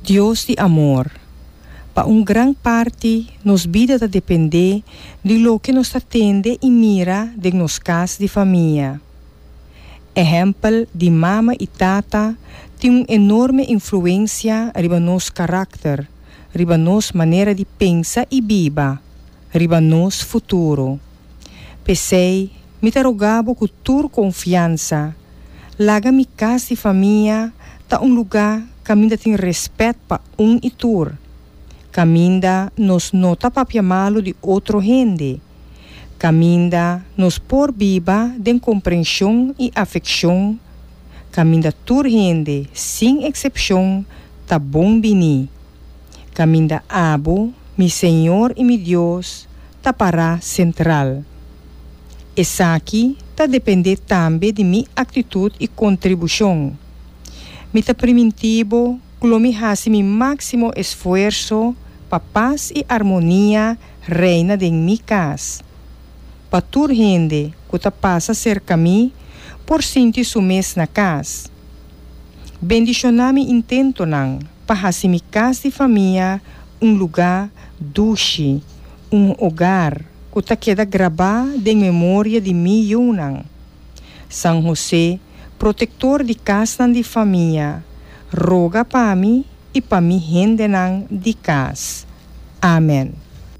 Dios di amor. Pa un gran parti nos bida ta dependé di loke nos ta tende i mira den nos kas di famia. Ehèmpel di mama i tata tin un enorme influensia riba nos karakter, riba nos manera di pensa i biba, riba nos futuro. P'esei, mi ta rogá bo ku tur konfiansa, laga mi kas di famia ta un lugá kaminda tin rèspèt pa un i tur, kaminda nos no ta papia malu di otro hende, kaminda nos por biba den komprenshon i afekshon, kaminda tur hende, sin eksepshon, ta bon biní. kaminda abu mi Señor i mi Dios ta pará sentral. Esaki ta dependé tambe di mi aktitut i kontribushon. Mi ta primintí bo ku lo mi hasi mi máksimo esfuerso pa pas i armonia reina den mi kas, pa tur hende ku ta pasa serka mi por sinti su mes na kas. Bendishoná mi intentonan pa hasi mi kas di famia un lugá dushi, un ogar ku ta keda grabá den memoria di mi yunan. San Hosé, protektor di kasnan di famia, roga pa mi i pa mi hendenan di kas. Amen.